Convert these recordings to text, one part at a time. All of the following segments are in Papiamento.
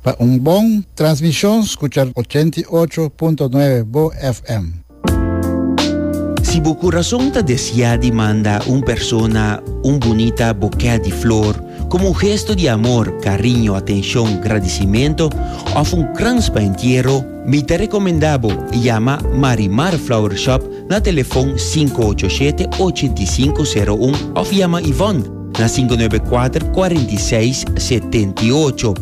Pa un bon transmishon skucha ochenta i ocho punto nuebe bo FM. Si bo kurason ta desiá di manda un persona un bunita bokè di flor komo un gesto di amor, kariño, atenshon, gradisimentu òf un krans pa entiero, Mi ta recomenda bo yama Marimar Flower Shop na telefon sinku ocho shete ochenta i sinku sero un of yama Yvonne na sinku nuebe kuater kuarenta i seis setenta i ocho.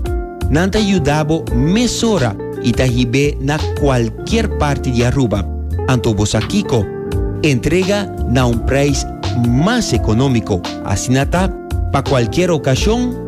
Nan ta yuda bo mesora i ta hib'é na kualkier parti di Aruba. Anto bo sa kiko? Entrega na un prijs mas economico, asina ta pa kualkier ocasion.